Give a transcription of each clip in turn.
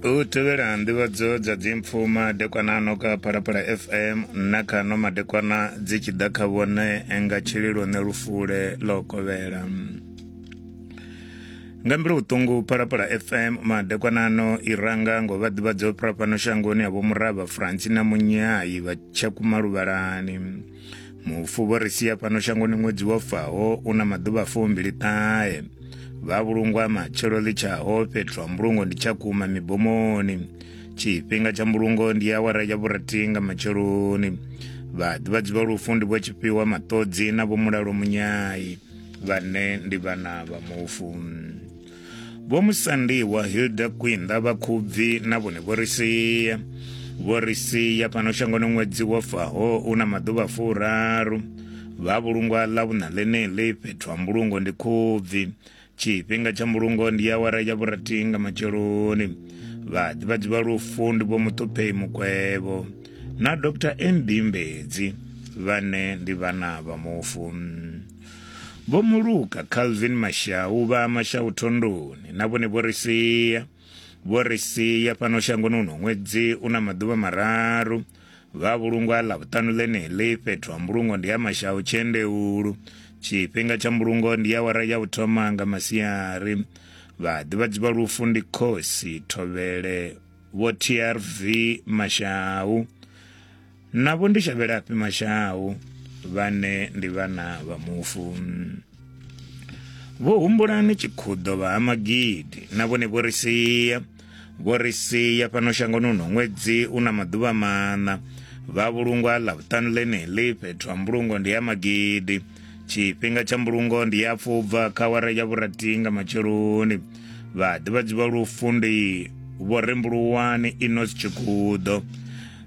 u tevhela nḓivhadzo dza dzimpfu madekwana ano ka phalaphala fm na kha no madekwana dzi tshi ḓa kha vhone nga tshililo ne lufule ḽo kovhela nga mbilu vhuṱungu phalaphala fm madekwana ano i ranga ngo vha ḓivhadza u fhira fhano shangoni ya vho murava franci na munyayi vha tshakumaluvhalani mufu vho ri sia fhano shangoni ṅwedzi wo faho u na maḓuvha fumbili ṱahe vha vhulungwa matshelo ḽi tshaho fhethu ha mbulungo ndi tshakhuma mibomoni tshifhinga tsha mbulungo ndi awara ya vhurathi nga matsheloni vhaḓivhadzi vha lufu ndi vho tshifhiwa maṱodzi na vho mulalo munyayi vhane ndi vhana vha mufu vho musandiwa hilda kwinda vha khubvi na vhone vho ri sia vho ri sia fhano shangoni ṅwedzi wo faho u na maḓuvha furaru vha vhulungwa ḽa vhuṋa ḽeneḽi fhethu ha mbulungo ndi khubvi tshifhinga tsha mbulungo ndi awara ya vhurathi nga matsheloni vhaḓivhadzi vha lufu ndi vho muṱuphei mukwevho na dr mb mbedzi vhane ndi vhana vha mufu Vho Muluka, Calvin Mashau, vha Mashau Thondoni, na vhone vho ri sia. Vho ri sia fhano shangoni uno ṅwedzi u na maḓuvha mararu. Vha vhulungwa ḽa vhuṱanu ḽeneḽi fhethu ha mbulungo ndi ha Mashau Tshendeulu. Tshifhinga tsha mbulungo ndi ya wara ya u thoma nga masiari. Vha ḓivhadzi vha lufu ndi khosi Thovhele vho TRV Mashau. navho ndi shavhelafhi mashau vhane ndi vhana vha mufu vho humbulani tshikhuḓo vha ha magidi na vhone vho ri sia vho ri sia fhano shangoni uno ṅwedzi u na maḓuvha maṋa vha vhulungwa ḽa vhuṱanu ḽeneḽi fhethu ha mbulungo ndi ya magidi tshifhinga tsha mbulungo ndi ya pfubva kha wara ya vhurathi nga matsheloni vhaḓivhadzi vha lufu ndi vho rembuluwani inos tshikhuḓo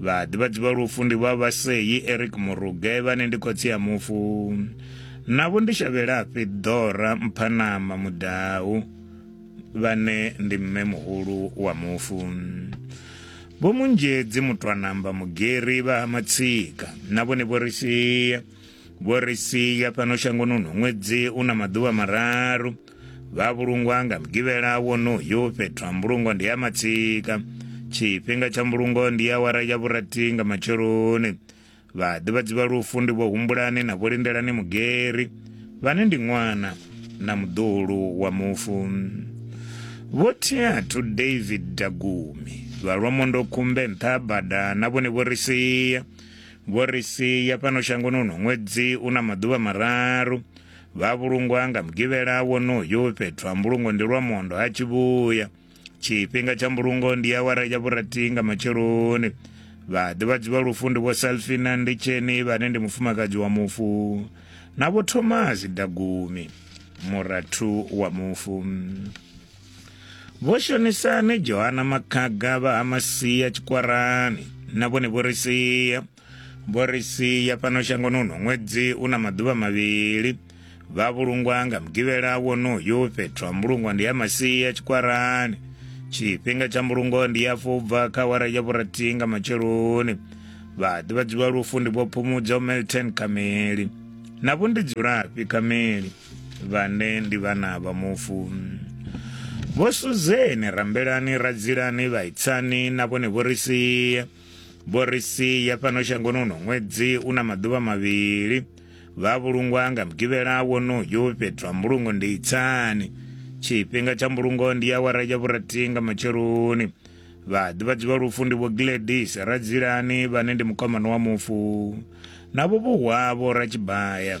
Vhaḓivhadzi vha lufu ndi vha Vhasei Eric Muruge vhane ndi khotsi ya mufu navho ndi Shavhelafhi Ḓora Mphanama Mudau vhane ndi mme muhulu wa mufu Vho Munzhedzi Mutwanamba Mugeri vha Matsika na vhone vho ri sia vho ri sia fhano shangoni ṅwedzi u na maḓuvha mararu vha vhulungwa nga mugivhela wonoyu fhethu ha mbulungo ndi ya matsika tshifhinga tsha mbulungo ndi awara ya vhurathi nga matsheloni vhaḓivhadzi vha lufu ndi vho humbulani na vho lindelani mugeri vhane ndi ṅwana na muḓulu wa mufu vho theathu david dagumi vha lwa mondo khumbe nṱha bada na vhone vho ri sia vho ri sia fhano shangoni uno ṅwedzi u na maḓuvha mararu vha vhulungwa nga mugivhela wonoyu fhethu ha mbulungo ndi lwa mondo ha tshivhuya tshifhinga tsha mbulungo ndi awara ya vhurathi nga matsheloni vhaḓivhadzi vha lufu ndi vho salfina ndi tsheni vhane ndi mufumakadzi wa mufu na vho thomasi dagumi murathu wa mufu vho shonisani johana makhaga vha ha masia tshikwarani na vhone vho ri sia vho ri sia fhano shangonuno ṅwedzi u na maḓuvha mavhili vha vhulungwa nga mugivhela wonoyu fhethu ha mbulungwa ndi ya masia tshikwarani tshifhinga tsha mbulungo ndi ya fubva kha wara ya vhurathi nga matsheloni vha ḓivhadziwa lufu ndi vho phumudzo melton kameli na vho ndi dzulafhi kameli vhane ndi vhana vha mufu vho suzeni rambelani radzilani vhaitsani na vhone vho ri sia vho ri sia fhano shangonuno ṅwedzi u na maḓuvha mavhili vha vhulungwa nga mugivhela wonoyo fhethu ha mbulungo ndi itsani tshifhinga tsha mbulungo ndi awara ya vhurathi nga matsheloni vhaḓivhadzi vha lufu ndi vho gladis radzilani vhane ndi mukomano wa mufu navho vhuhwavho ratshibaya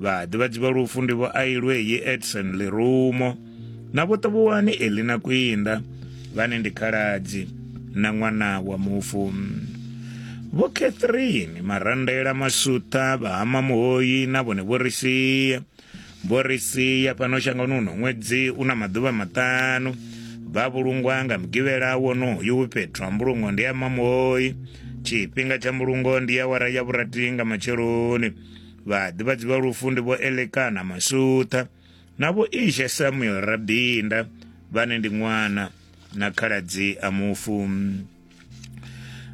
Vhaḓivhadzi vha lufu ndi vho Ailweyi Edson Lirumo na vho Ṱavhuwani Elina Kwinda vhane ndi khaladzi na ṅwana wa mufu. Vho Catherine Marandela Masutha vha Hama Muhoyi na vhone vho ri sia vho ri sia fhano shangoni uno ṅwedzi u na maḓuvha maṱanu vha vhulungwa nga mugivhela wonoyu fhethu ha mbulungo ndi ya mamuhoyi tshifhinga tsha mbulungo ndi ya wara ya vhurathi nga matsheloni vhaḓivhadzi vha lufu ndi vho elekana masutha na vho ishe samuel rabinda vhane ndi ṅwana na khaladzi a mufu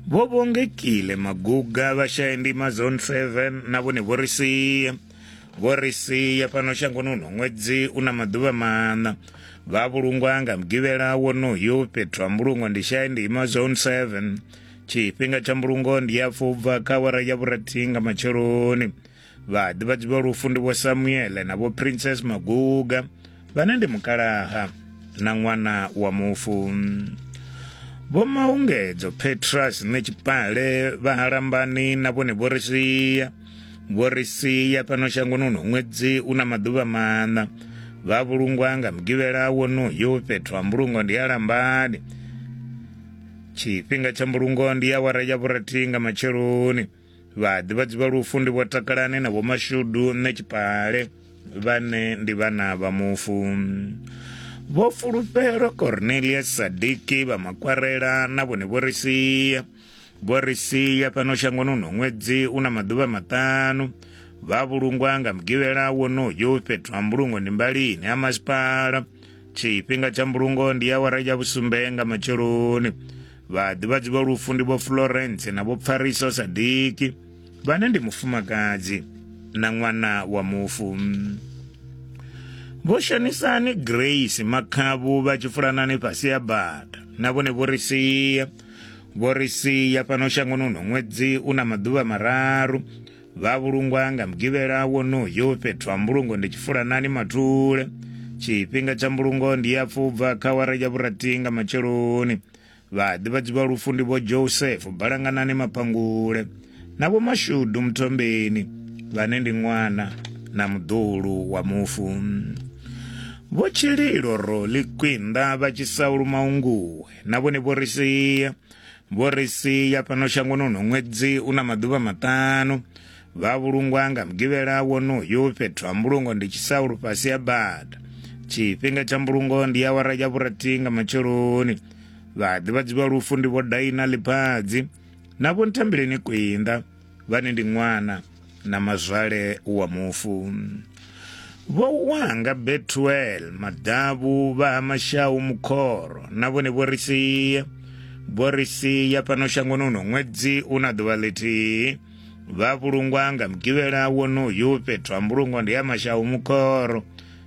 vho vhongekile maguga vhashayendima zone 7 na vhone vho ri sia vho ri sia fhano shangoni uno ṅwedzi u na maḓuvha maṋa vha vhulungwa nga mugivhela wonoyo fhethu ha mbulungo ndi shayendima zone 7 tshifhinga tsha mbulungo ndi ya fubva kha wara ya vhurathi nga matsheloni vhaḓivhadzi vha lufu ndi vho samuele na vho princess maguga vhane ndi mukalaha na ṅwana wa mufu vho maungedzo petras ne tshipale vha halambani na vhone vho ri sia vho ri sia fhano shangoni uno ṅwedzi u na maḓuvha maṋa vha vhulungwa nga mugivhela wonoyo fhethu ha mbulungo ndi halambani tshifhinga tsha mbulungo ndi awara ya vhurathi nga matsheloni vhaḓivhadzi vha lufu ndi vho takalane na vhomashudu nṋe tshipale vhane ndi vhana vha mufu vho fulufhelo cornelius sadiki vha makwarela na vhone vho ri sia vho ri sia fhano shangoni uno ṅwedzi u na maḓuvha maṱanu vha vhulungwa nga mugivhela wonoyo fhethu ha mbulungo ndi mbalini ha masipala tshifhinga tsha mbulungo ndi awara ya vhusumbe nga matsheloni vhaḓivhadzi vha lufu ndi vho florence na vho pfariso sadiki vhane ndi mufumakadzi na ṅwana wa mufu vho shanisani grace makhavhu vha tshi fulanani fhasi ya bada na vhone vho ri sia vho ri sia fhano shangoni uno ṅwedzi u na maḓuvha mararu Vha vhulungwa nga mugivhela wonoyu fhethu ha mbulungo ndi tshifulanani mathule tshifhinga tsha mbulungo ndi ya pfubva kha wara ya vhurathi nga matsheloni vhaḓivhadzi vha lufu ndi vho joseph balanganani maphangule na vho mashudu muthombeni vhane ndi ṅwana na muḓulu wa mufu vho tshililo roli kwinda vha tshisaulu maunguwe na vhone vho ri sia vho ri sia fhano shangoni uno ṅwedzi u na maḓuvha maṱanu vha vhulungwa nga mugivhela wonoyo fhethu ha mbulungo ndi tshisaulu fhasi ha bada tshifhinga tsha mbulungo ndi awara ya vhurathi nga matsheloni vhaḓivhadzi vha lufu ndi vho daina ḽiphadzi na vho nthambileni kwinda vhane ndi ṅwana na mazwale wa mufu vho wanga betuel maḓavhu vha ha mashau mukhoro na vhone vho ri sia vho ri sia fhano shangoni uno ṅwedzi u na ḓuvha ḽithihi vha vhulungwa nga mugivhela wonoyu fhethu ha mbulungo ndi ya mashau mukhoro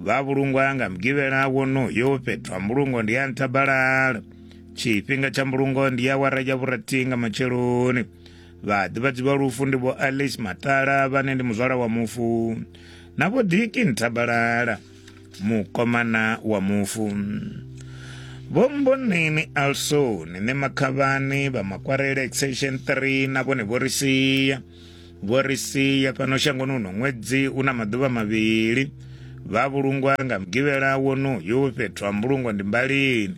vha vhulungwa ya nga mugivhela wonoyo fhethu ha mbulungo ndi ya nthabalala tshifhinga tsha mbulungo ndi ya wara ya vhurathi nga matsheloni vhaḓivhadzi vha lufu ndi vho alice matala vhane ndi muzwala wa mufu na vho diki nthabalala mukomana wa mufu vho mboneni alsoni ne makhavhani vha makwarele extension 3 na vhone vho ri sia Vho ri sia fhano shangoni uno ṅwedzi u na maḓuvha mavhili. Vha vhulungwa nga Mugivhela wonoyu fhethu ha mbulungo ndi Mbalini.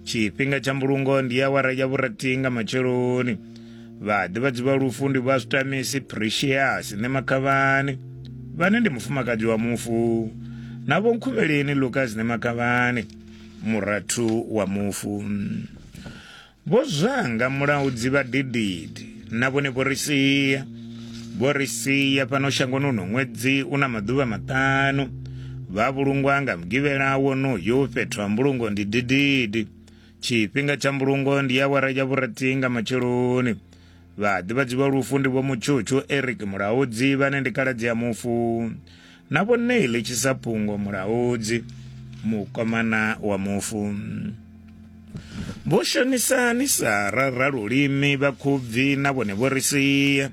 Tshifhinga tsha mbulungo ndi awara ya vhurathi nga matsheloni. Vhaḓivhadzi vha lufu ndi vha Zwitamisi Precious Ṋemakhavhani vhane ndi mufumakadzi wa mufu na vho Nkhuvheleni Lucas Ṋemakhavhani murathu wa mufu. Vho zwanga mulaudzi vha dididi na vhone vho ri sia vho ri sia fhano shangoni uno ṅwedzi u na maḓuvha maṱanu vha vhulungwa nga mugivhela wonoyo fhethu ha mbulungo ndi dididi tshifhinga tsha mbulungo ndi awara ya vhurathi nga matsheloni Vhaḓivhadzi vha lufu ndi vho Mutshutshu Eric Mulaudzi vhane ndi kaladzi ya mufu na vho Neil Tshisaphungo Mulaudzi mukomana wa mufu. Vho Shonisani Sara Ralulimi vha Khubvi na vhone vho ri sia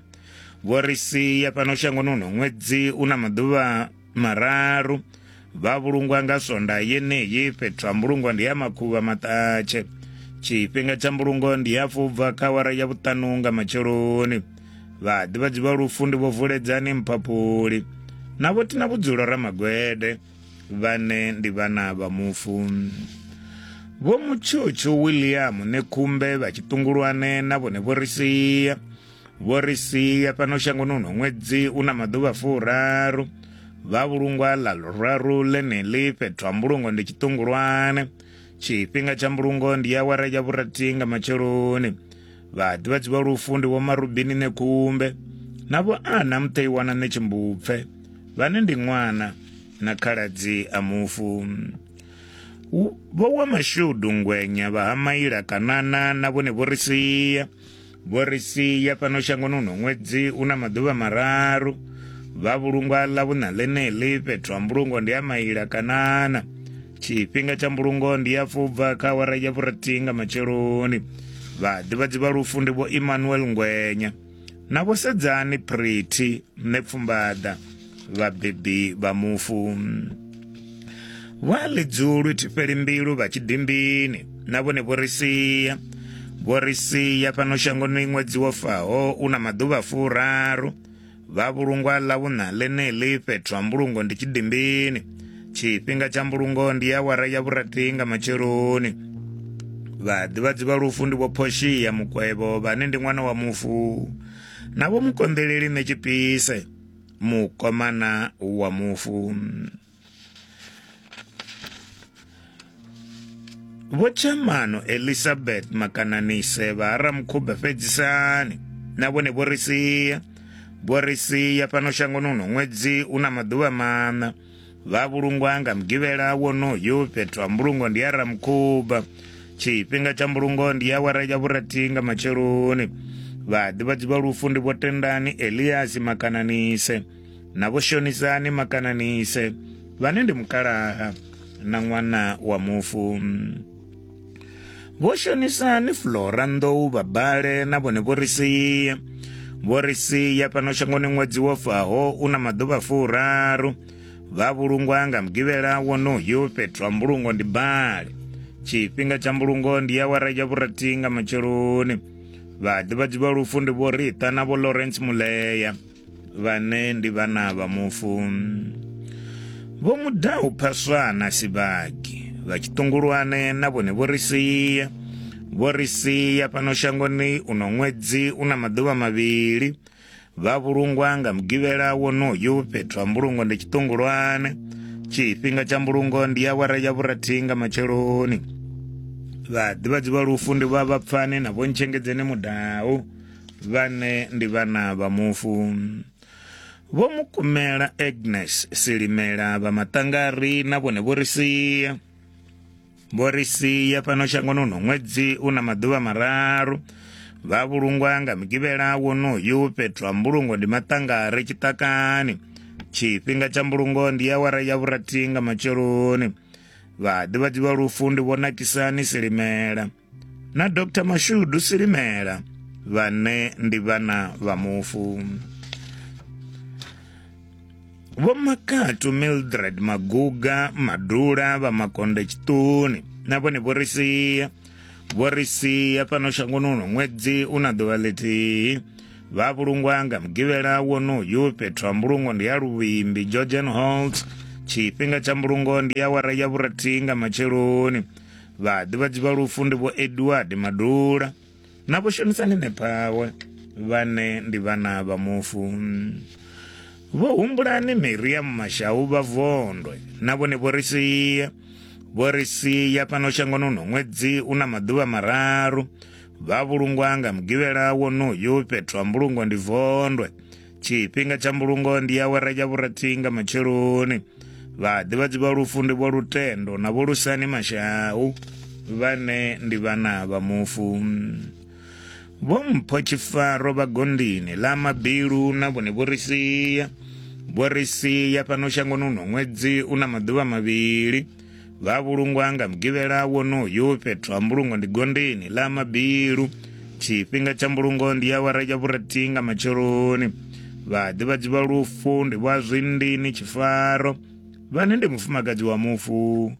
vho ri sia fhano shangoni uno ṅwedzi una maḓuvha mararu vha vhulungwa nga swonda yeneyi fhethu ha mbulungo ndi ya makhuvha maṱatshe tshifhinga tsha mbulungo ndi ya fubva kha wara ya vhuṱanu nga matsheloni vhaḓivhadzi vha lufu ndi vho vuledzani mphaphuli na vho tina vhudzulo ramagwede vhane ndi vhana vha mufu vho mutshutshu william nekhumbe vha tshiṱungulwane na vhone vho ri sia vho ri sia fhano shangoni uno ṅwedzi u na maḓuvha furaru vha vhulungwa ḽa luraru ḽeneḽi fhethu ha mbulungo ndi tshiṱungulwane tshifhinga tsha mbulungo ndi ya awara ya vhurathi nga matsheloni vhaḓivhadzi vha lufu ndi vho marubini ṋekhumbe na vho ana muṱeiwana ṋe tshimbupfe vhane ndi ṅwana na khaladzi a mufu vho wa mashudu ngwenya vha ha maila kanana na vhone vho ri sia vho ri sia fhano shangoni uno ṅwedzi u na maḓuvha mararu vha vhulungwa ḽa vhuṋa ḽeneḽi fhethu ha mbulungo ndi a maila kanana tshifhinga tsha mbulungo ndi ya fubva kha awara ya vhurathihi nga matsheloni vhaḓivhadzi vha lufu ndi vho emmanuel ngwenya na vho sedzani pretty nṋe pfumbaḓa vhabebi vha mufu vha ḽidzulu thifheli mbilu vha tshidimbini na vhone vho ri sia vho ri sia fhano shangoni ṅwedzi wo faho u na maḓuvha furaru vha vhulungwa ḽa vhuṋa ḽeneḽi fhethu ha mbulungo ndi tshidimbini tshifhinga tsha mbulungo ndi ya wara ya vhurathi nga matsheloni vhaḓivhadzi vha lufu ndi vho phoshiya mukwevho vhane ndi ṅwana wa mufu na vho mukonḓeleli ṋe tshipise mukomana wa mufu vho chamano elizabeth makananise vha ha ramukhube fhedzisani na vhone vho ri sia vho ri sia fhano shangoni uno ṅwedzi u na maḓuvha maṋa Vha vhulungwa nga mugivhela wonoyu fhethu ha mbulungo ndi ya Ramukhuba. Tshifhinga tsha mbulungo ndi awara ya vhurathi nga matsheloni. Vhaḓivhadzi vha lufu ndi vho Tendani Eliasi Makananise na vho Shonisani Makananise vhane ndi mukalaha na ṅwana wa mufu. Vho shonisa ni Flora Nḓou vha bale na vhone vho ri sia. Vho ri sia fhano shangoni ṅwedzi wo faho u na maḓuvha furaru. Vha vhulungwa nga mugivhela wonoyo fhethu ha mbulungo ndi bale. Tshifhinga tsha mbulungo ndi awara ya vhurathi nga matsheloni. Vhaḓivhadzi vha lufu ndi Vho Rita na Vho Lawrence Muleya. vhane ndi vhana vha mufu vho mu ḓa u phaswa na sibagi vha tshiṱungulwane na vhone vho ri sia vho ri sia fhano shangoni uno ṅwedzi u na maḓuvha mavhili vha vhulungwa nga mugivhela wonoyu fhethu ha mbulungo ndi tshiṱungulwane tshifhinga tsha mbulungo ndi awara ya vhurathi nga matsheloni vhaḓivhadzi vha lufu ndi vha vhapfani na vhontshengedzeni mudau vhane ndi vhana vha mufu vho mukumela agnes silimela vha maṱangari na vhone vho ri sia vho ri sia fhano shangoni uno ṅwedzi u na maḓuvha mararu vha vhulungwa nga mugivhela wonoyu fhethu ha mbulungo ndi maṱangari tshiṱakani tshifhinga tsha mbulungo ndi ya wara ya vhurathi nga matsheloni vhaḓivhadzi vha lufu ndi vho nakisani silimela na dr mashudu silimela vhane ndi vhana vha mufu vho makatu mildred maguga madula vha makonde tshiṱuni na vhone vho ri sia vho ri sia fhano shangoni uno ṅwedzi u na ḓuvha ḽithihi vha vhulungwa nga mugivhela wonoyu fhethu ha mbulungo ndi ya luvhimbi georgian holt tshifhinga tsha mbulungo ndi ya wara ya vhurathihi nga matsheloni Vhaḓivhadzi vha lufu ndi vho Edward Madula na vho Shonisani Nephawe vhane ndi vhana vha mufu. Vho humbulani Miriam Mashau vha Vondwe na vhone vho ri sia vho ri sia fhano shangoni uno ṅwedzi una maḓuvha mararu vha vhulungwa nga mugivhela wonoyu fhethu ha mbulungo ndi Vondwe tshifhinga tsha mbulungo ndi awara ya vhurathi nga matsheloni vhaḓivhadzi vha lufu ndi vho lutendo na vho lusani mashau vhane ndi vhana vha mufu vho mpho tshifaro vha gondini ḽa mabilu na vhone vho ri sia vho ri sia fhano shangoni uno ṅwedzi u na maḓuvha mavhili vha vhulungwa nga mugivhela wonoyu fhethu ha mbulungo ndi gondeni ḽa mabilu tshifhinga tsha mbulungo ndi awara ya vhurathi nga matsheloni vhaḓivhadzi vha lufu ndi vha zwindini tshifaro vhane ndi mufumakadzi wa mufu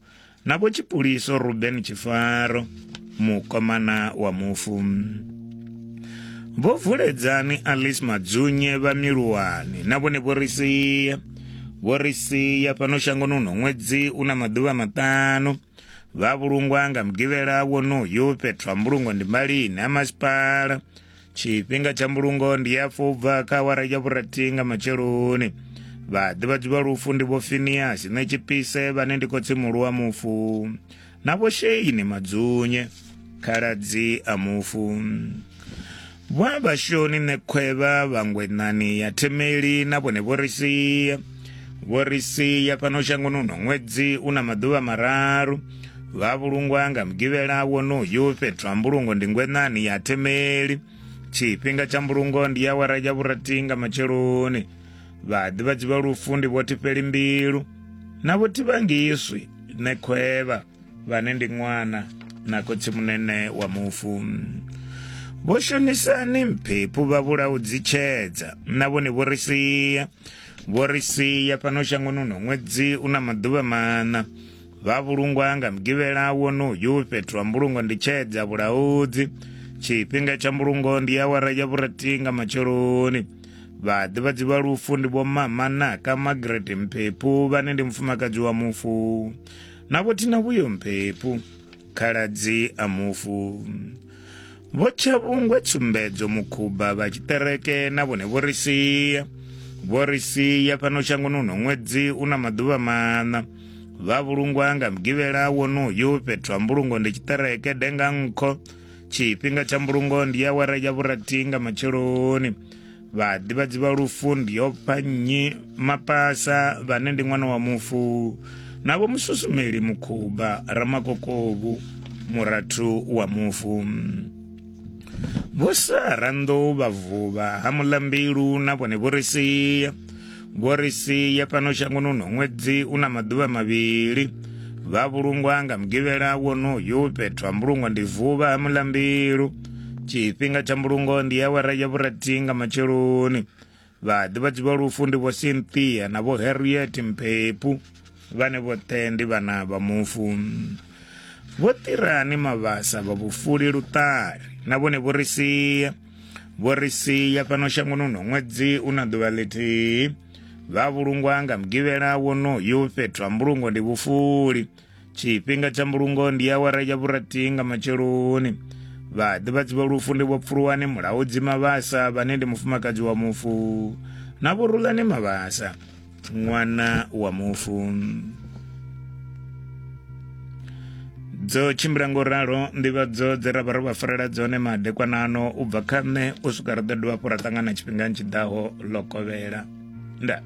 na vho tshipuliso ruben tshifaro mukomana wa mufu vho vuledzani alice madzunye vha miluwani na vhone vho ri sia vho ri sia fhano shangoni uno ṅwedzi u na maḓuvha maṱanu vha vhulungwa nga mugivhela wonoyo fhethu ha mbulungo ndi malini ha masipala tshifhinga tsha mbulungo ndi ya fubva kha awara ya vhurathi nga matsheloni vhaḓivhadzi vha lufu ndi vho finiasi ṋetshipise vhane ndi khotsimulu wa mufu na vho Sheini Madzunye khaladzi a mufu vha vhashoni ṋekhwevha vhangwenani ya themeli na vhone vho ri sia vho ri sia fhano shangoni uno ṅwedzi u na maḓuvha mararu vha vhulungwa nga mugivhela wonoyu fhethu ha mbulungo ndi ngwenani ya themeli tshifhinga tsha mbulungo ndi awara ya vhurathi nga matsheloni vhaḓivhadzi vha lufu ndi vho tifheli mbilu na vho tivhangiswi ne khwevha vhane ndi ṅwana na khotsi munene wa mufu vho shonisani mphephu vha vhulao dzitshedza na vhone vho ri sia vho ri sia fhano shangoni uno ṅwedzi u na maḓuvha maṋa vha vhulungwa nga mugivhela wonoyu fhethu ha mbulungo ndi tshedza vhulaudzi tshifhinga tsha mbulungo ndi awara ya vhurathi nga matsheloni vhaḓivhadzi vha lufu ndi vho mama naka margaret mphephu vhane ndi mufumakadzi wa mufu na vho thina vhuyo mphephu khaladzi a mufu vho tshavhungwe tsumbedzo mukhuba vha tshiṱereke na vhone vho ri sia vho ri sia fhano shangoni uno ṅwedzi u na maḓuvha maṋa vha vhulungwa nga mugivhela wonoyu fhethu ha mbulungo ndi tshiṱereke denga nkho tshifhinga tsha mbulungo ndi awara ya vhurathi nga matsheloni vhaḓivhadzi vha lufu ndi yo pfa nnyi mapasa vhane ndi ṅwana wa mufu na vho mususumeli mukhuba ramakokovu murathu wa mufu vho sara nḓou vha vhuvha ha mulambilu na vhone vho ri sia Vho ri sia fhano shangoni uno ṅwedzi u na maḓuvha mavhili vha vhulungwa nga mugivhela wonoyu fhethu ha mbulungo ndi vuvha ha mulambilu tshifhinga tsha mbulungo ndi awara ya vhurathi nga matsheloni vhaḓivhadzi vha lufu ndi vho cynthia na vho harriet mphepu vhane vhoṱhe ndi vhana vha mufu vho ṱirani mavhasa vha vhufuli luṱari na vhone vho ri sia vho ri sia fhano shangoni uno ṅwedzi u na ḓuvha ḽithihi vha vhulungwa nga mugivhela wonoyu fhethu ha mbulungo ndi vhufuli tshifhinga tsha mbulungo ndi awara ya vhurathi nga matsheloni vhaḓivhadzi vha lufu ndi vho pfuluwani mulaudzi mavhasa vhane ndi mufumakadzi wa mufu na vhorulani mavhasa ṅwana wa mufu dzo tshimbila ngo ralo nḓivhadzo dze ra vha ro vha farela dzone madekwanano u bva kha nṋe u swika ri ḓo dovha fho ra ṱangana tshifhingani tshi ḓaho ḽo kovhela ndaa